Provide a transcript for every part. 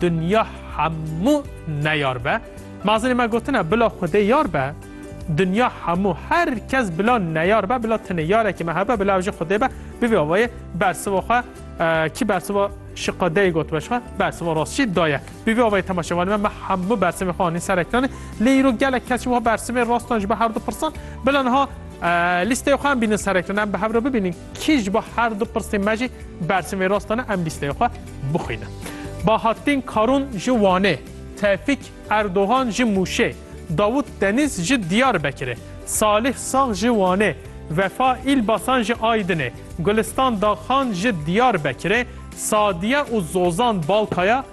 Dinya hemû neyar be. Mazinê me gotine bila Xwedê yar be. Dinya hemû her kes bila neyar be, bila tenê yarekî me hebe, bila ew jî Xwedê be. Bi vî awayê bersiva xwe kî bersiva şiqa deyê gotibe ji xwe, bersiva rast jî da ye. Bi vî awayê temaşevanê me me hemû bersimê xwe anîn ser ekranê. Lê îro gelek kes jî wiha bersimê rastan ji ber herdu pirsan bila niha lîsteya xwe em bînin ser ekranê, em bi hev re bibînin. Kî ji bo her du pirsên me jî bersiv ê rast dane em lîsteya xwe bixwînin. Bahattin Karun ji Wanê, Tevfîk Erdogan ji Mûşê, Davut Deniz ji Diyarbekirê, Salih Sag ji Wanê, Vefa Îlbasan ji Aydinê, Gulistan Dagxan ji Diyarbekirê, Sadiye û Zozan Balkaya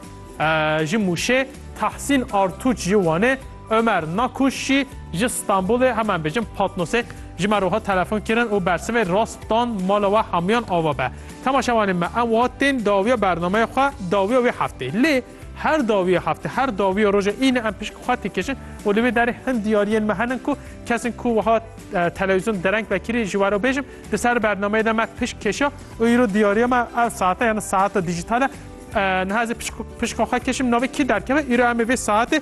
ji Mûşê, Tahsîn Artûç ji Wanê, Omer Nakuş jî ji Stenbolê heman bêjin Patnosê ji me re hat telefon kirin û bersivê rast dan mala we hemiyan ava be. Temaşevanê me em wiha tên dawiya bernameya xwe dawiya wê heftê. Lê her dawiya heftê her dawiya roja îne em pişk xwe têkişin û li vê derê hin diyariyên me hene ku kesên ku wiha telewîzyon dereng vekirî ji were bêjim di ser bernameyê de me pişk keşiya û îro diyariya me ev saete yani saeta dijîtal e niha ez ê pişka xwe keşim navê kî derkeve îro em ê vê saetê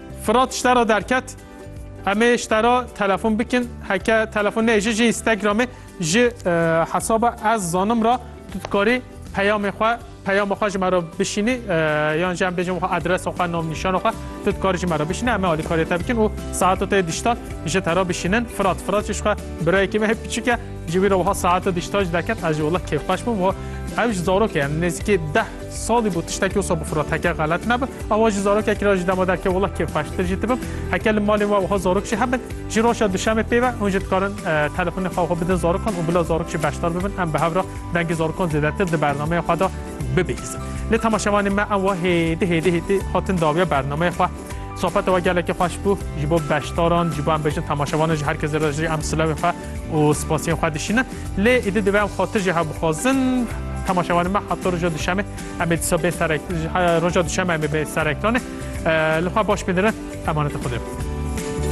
Firat ji te re derket. Em ê ji te re telefon bikin. Heke telefon neyê ji ji Instagramê ji hesaba ez zanim re tu dikarî peyamê xwe peyama xwe ji me re bişînî yan jî em bêjin xwe adresa xwe navnîşana xwe tu dikarî ji me re bişînî em ê alîkariyê te bikin û saeta te diştan ji te re bişînin Firat Firat jî ji xwe birayekî me hê piçik e ji wî re wiha saeta diştan ji deket ez ji wela kêfxweş bûm û ew ji zarokê em nêzîkî deh Salî bû tiştekî wisa bifira teke xelet nebe. Awa jî zarokekî ra jî dema derkeve wila kê xweştir jî dibim. Heke li malên we wiha zarok jî hebin jî roja duşemê pêve hûn jî dikarin telefonê xwe wiha bidin zarokan û bila zarok jî beşdar bibin em bi hev ra dengê zarokan zêdetir di bernameya xwe de bibihîzin. Lê temaşevanên me em wiha hêdî hêdî hêdî hatin dawiya bernameya xwe. Sohbeta we gelekî xweş bû. Ji bo beşdaran, ji bo em bêjin temaşevanan jî her kes zêde jî em silewên xwe û spasiyên xwe dişînin. Lê êdî divê em xwe tu jî hev bixwazin. Temaşevanên me heta roja duşemê em ê disa bên serek roja duşeme em ê bên serektanê. Li xwe baş bê dirin emanetê Xwedê be.